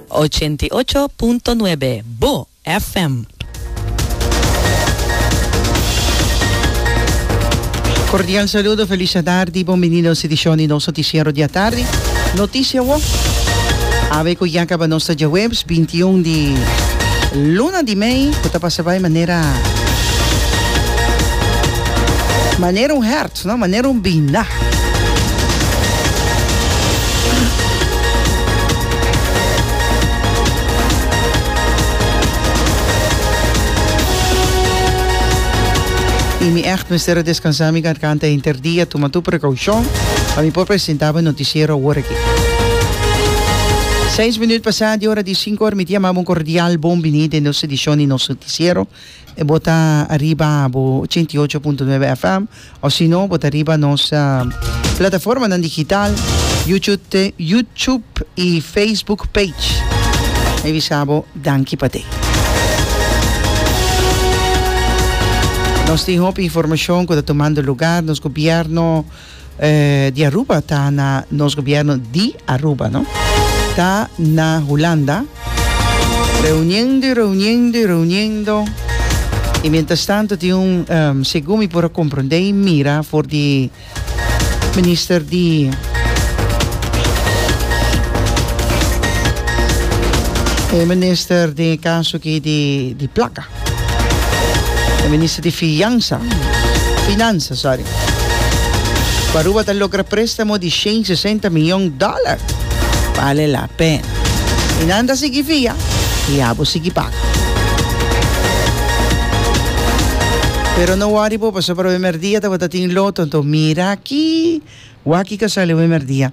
Ochenta i ocho punto nuebe, bo FM. Cordial saludo, feliz atardi, bon binido nos edicion di nos noticiero di atardi. Noticia awo, awe cu ya caba nos ta dje webs binti un di luna di mei cu ta pasa bay manera manera un hert. Sona manera un binda. Y mi echt mester a descansa mi garganta henter dia, tuma tu precaucion pa mi por presenta bo e noticiero awor aki. Seis minuut pasa di ora di cinco, mi ta yama bo un cordial bon bini den nos edicion di nos noticiero. e bo ta ariba bo ochenta i ocho punto nuebe FM, o si no, bo ta riba nos plataformanan digital, YouTube, YouTube i Facebook page. Mi bisa bo danki pa te. Nos tin hopi informashon ku ta tumando lugar, nos gobièrnu di Aruba ta na nos gobierno di Aruba no ta na Hulanda reuniendo y reuniendo y reuniendo y mientras tanto tin un segun mi por a comprende y mira for di minister di minister den e caso aki di placa. E minister di fiansa, finansa, sorry, ku Aruba ta logra préstamo di shen sesenta mion dòler bale la pena. I nan ta sigui fia i abo sigui paga. Pero no wòri bo pasobra wimerdia tabata tin loto, anto mira aki wak i ka sali wimerdia.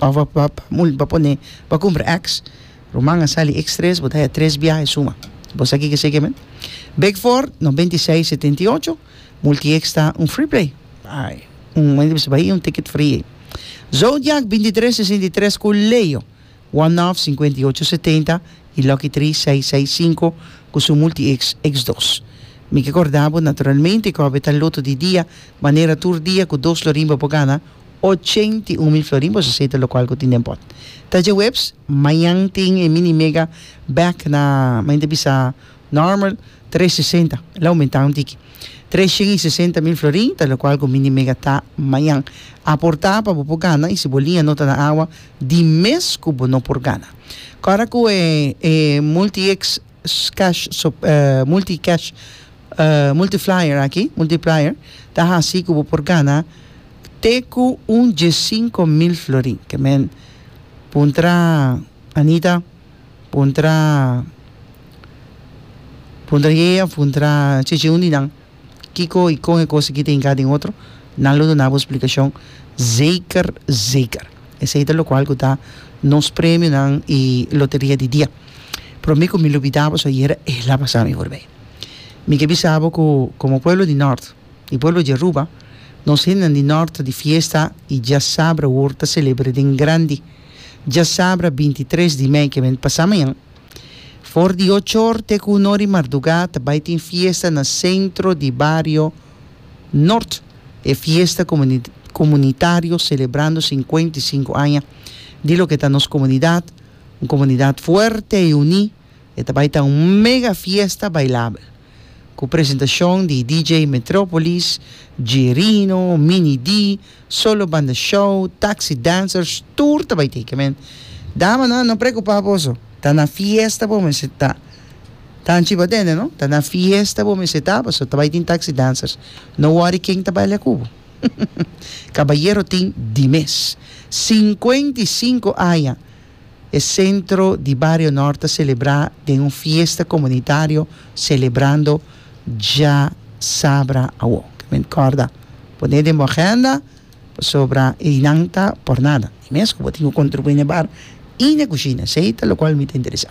Of bo pa bo pone pa cumpra ex ruman a sali ex tres bo ta haya tres biahe suma bo sa kiko eseki men bek for noventa y seis setenta y ocho multi ex ta un free play ai un momento bisa bay un ticket free ey zodiac binti tres sesenta y tres cu leo one of cincuenta y ocho setenta y lucky three seis seis cinco cu su multi ex ex dos mi ke corda bo naturalmente cu awe ta loto di dia manera tur dia cu dos lo rimba bo gana Ochenta i un mil florin boso seta lokual ku tin den pòt. Ta dje webs, mañan tin e mini mega bèk na mañan ta bisa nòrmal tres sesenta, el a oumentá un tiki. Tres shen i sesenta mil florin ta lokual ku mini mega ta mañan. Aportá pa bo por gana i si bo liña no ta na awa di mes ku bo no por gana. Kòrda ku e multi-x. cash multi cash multiplier aki multiplier ta hasi ku bo por gana te ku un diesinko mil florin ke men puntra Anita puntra puntra Yeye puntra Chichi un di nan. kiko i kon e kos aki ta hinká den otro, nan lo duna bo splikashon zeker zeker. Esei ta lokual ku ta nos premionan i loteria di dia. Pero mi ku mi lo bida bo so ayera el a pasa mi forbei. Mi ke bisa bo ku komo pueblo di nort i pueblo di Aruba nos hendenan di nort di fiesta i diasabra awor ta selebr'é den grandi. Diasabra bintitres di mei ke bai pasa mañan. For di ochor te ku uno di mardugá ta bai tin fiesta na sentro di bario Nort. E fiesta komunitario selebrando sinkuenta i sinku aña di loke ta nos komunidat, un komunidat fuerte i uní. E ta bai ta un mega fiesta bailabel. Ku presentashon di DJ Metropolis, G-Rino, Mini D, Solo Banda Show, Taxi Dancers, tur ta bai teken men. Damanan no preokupá boso, ta na fiesta bo mester ta. Ta anchi bo a tende no? Ta na fiesta bo mester ta, pasobra ta bai tin Taxi Dancers. No wòri ken ta baila ku bo. Kabayero tin di mes. Sinkuenta i sinku aña E sentro di Bario Nort ta selebrá den un fiesta komunitario selebrando dja sabra awo. Ke men kòrda pon'é den bo agenda pasobra einan ta por nada. I mes ku bo tin ku kontribuí n'e bar i n'e kushina, si ei ta lokual mi ta interesá.